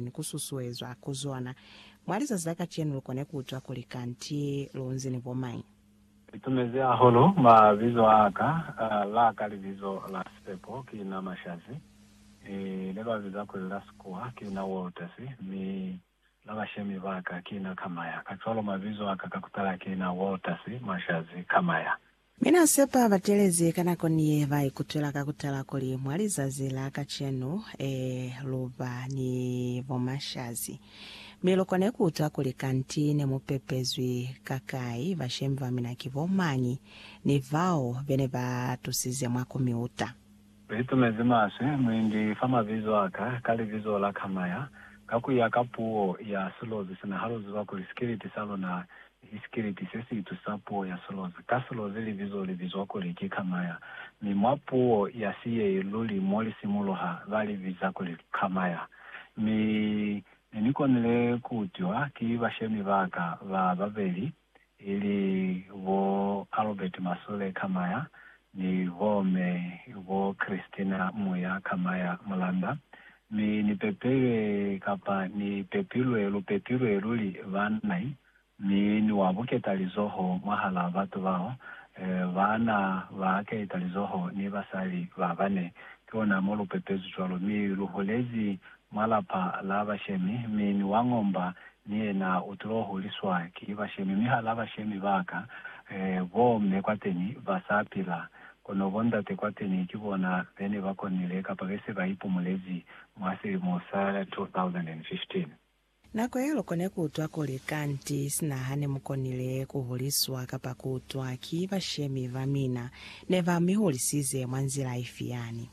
ni ku susuezwa ku zona. Mwa lizazi la kacenu lu kone ku utwa kuli kanti lu nzi ni bo mañi. Ni tumezi hahulu mabizo a ka, la ka libizo la sipepo ki na Mashazi, le ba biza kuli la sikuwa ki na Walters, mi la bashemi ba ka ki na Kamaya. Kacwalo mabizo a ka ka kutala ki na Walters, Mashazi, Kamaya. Mi Na sepa batelezi ka nako ni ye ba ikutwela ka ku tala kuli mwa lizazi la kacenu, ee, lu ba ni bomashazi. Mi lu kone ku utwa kuli kanti ne mu pepezwi ka kai, bashemi ba mina ki bo mañi, ni bao be ne ba tusize mwa ku mi uta. Lu itumezi maswe, mu indi fa mabizo a ka, ka libizo la Kamaya, ka ku ya ka puo ya silozi sina, ha lu ziba kuli sikiliti sa luna Ki sikeleti se si itusa puo ya silozi. Ka silozi libizo li bizwa kuli ki Kamaya, mi mwa puo ya siyei luli mo li simuluha ba li biza kuli Kamaya. Mi ne ni konile ku utwiwa ki bashemi ba ka ba babeli, ili bo Albert Masule Kamaya ni bo Me bo Christina Muya Kamaya Mulanda, Mi ni pepilwe, kapa ni pepilwe, lu pepilwe luli, banna, mi ni wa buketa lizoho mwahalaa batu bao, eh, baana ba keeta lizoho ni basali ba bane. Ki ona mo lu pepezwi cwalo. Mi lu hulezi mwa lapa la bashemi, mi ni wa ngomba ni yena u tilo huliswa ki bashemi. Mi hala bashemi ba ka, eh, bo mme kwateni ba sa pila, Kono bondate kwateni ki bona bene ba konile kapa be se ba ipumulezi mwa silimo sa 2015. Nako yeo lukone ku utwa kuli, Kanti sina ha ne mu konile ku huliswa kapa ku utwa ki bashemi ba mina, ne ba mi hulisize mwa nzila ifi yani?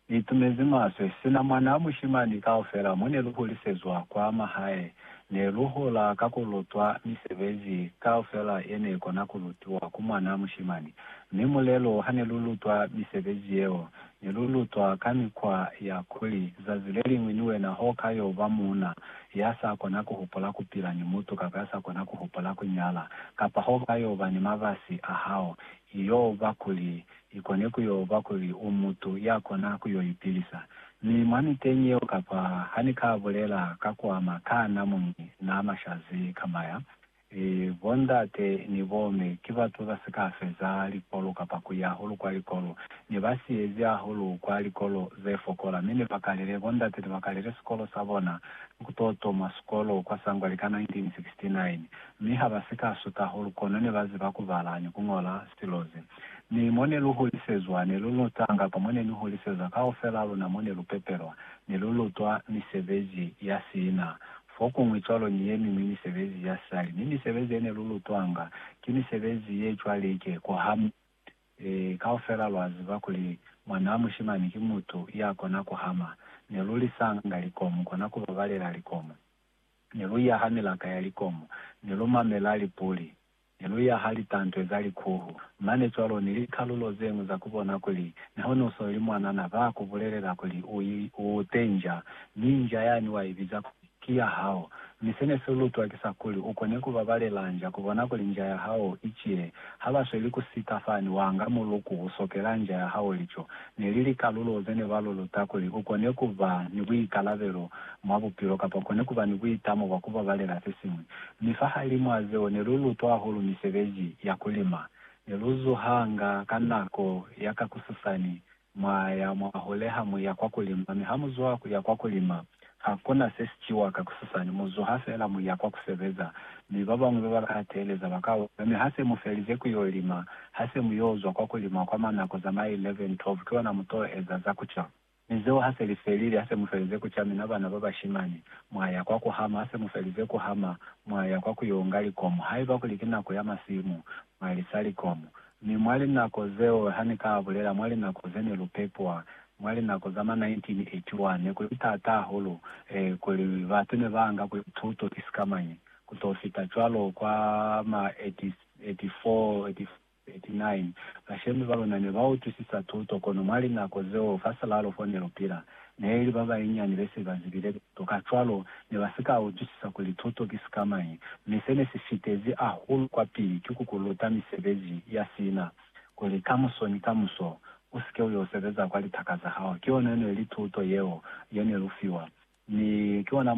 Ni itumezi maswe. Sina mwanaa mushimani kaufela mo ne lu hulisezwa kwa mahae, ne lu hola ka ku lutwa misebezi kaufela ye ne kona ku lutiwa ku mwanaa mushimani. Mi mulelo ha ne lu lutwa misebezi yeo, ne lu lutwa ka mikwa ya kuli zazi le liñwi ni wena ho ka yo ba muuna ya sa kona ku hupula ku pila ni mutu kapa ya sa kona ku hupula ku nyala, kapa ho ka yo ba ni mabasi a hao, i yo ba kuli I kone ku yo ba kuli u mutu ya kona ku yo ipilisa. Mi mwa miteñi yeo kapa ha ni ka bulela ka kwa makana mo ni na mashazi kamba ya, e, bo ndate ni bo me ki batu ba si ka feza likolo kapa ku ya hulu kwa likolo, ne ba siyezi hahulu kwa likolo ze fokola, mi ne ba kalile, bo ndate ne ba kalile sikolo sa bona ni ku to toma sikolo kwa Sangwali ka 1969. Mi ha ba si ka suta hulu, kono ne ba ziba ku bala ni ku ñola silo ze Ni mo ne lu holisezwa, ne lu luta, kapa mo ne ni holisezwa, kaufelaa luna mo ne lu pepelwa, ne lu lutwa misebezi ya siina, fokuñwi cwalo ni ye miñwi misebezi ya sali. Mi misebezi ye ne lu lutwanga, ki misebezi ye cwalike kwa hamu. Ee, kaufelaa lwa ziba kuli mwanaa mushimani ki mutu ya kona ku hama. Ne lu lisanga likomu, kona ku babalela likomu. Ne lu yaha milaka ya likomu. Ne lu mamelaa lipuli. Ne lu yaha litantwe za likuhu, mane cwalo ni likalulo zeñwi za ku bona kuli neho ni usoli mwanana, ba ku bulelela kuli u ute nja, mi nja yani wa ibiza kuli ki ya hao. Mi se ne si lu twakisa kuli u kone ku babalela nja, ku bona kuli nja ya hao i cile. Ha ba sweli ku sika fani, wa nga muluku, u sokela nja ya hao lico. Ne li likalulo ze ne ba lu luta kuli u kone ku ba ni buikalabelo mwa bupilo kapa u kone ku ba ni buitamo bwa ku babalela se siñwi. Mi fahalimw'a zeo ne lu lutwa hahulu misebezi ya ku lima. Ne lu zuhanga ka nako ya ka kususani, mwa ya mwa hule ha mu ya kwa ku lima. Mi ha mu zuha ku ya kwa ku lima, ha ku na se si ciwa ka kususani, mu zuha fela mu ya kwa ku sebeza. Mi ba bañwi ba ba ka teeleza ba ka hula. Mi ha se mu felize ku y'o lima, ha se mu y'o zwa kwa ku lima kwa mwa nako za ma 11, 12, ki ona mu t'o eza za ku ca. Mi zeo ha se li felile, ha se mu felize ku camina bana ba bashimani, mwa ya kwa ku hama, ha se mu felize ku hama, mwa ya kwa ku yo nga likomu, haiba kuli ki nako ya masimu, mwa lisa likomu. Mi mwa linako zeo, ha ni ka bulela, mwa linako ze ne lu pepwa, mwa linako za ma 1981, ne ku li taata hahulu, eh, kuli batu ne ba nga kuli tuto ki sikamañi, ku to fita cwalo kwa ma 80, 84, 85. 39, bashemi ba luna ne ba utwisisa tuto, kono mwa linako zeo fa silalo fo ne lu pila, ne li ba banyinyani be se ba zibile tuto. Kacwalo, ne ba si ka utwisisa kuli tuto ki sikamañi. Mi se ne si fitezi hahulu kwapili ki ku ku luta misebezi ya sina, kuli kamuso ni kamuso u si ke u yo sebeza kwa litaka za hao. Ki yona ne li tuto yeo ye ne lu fiwa, mi ki ona mo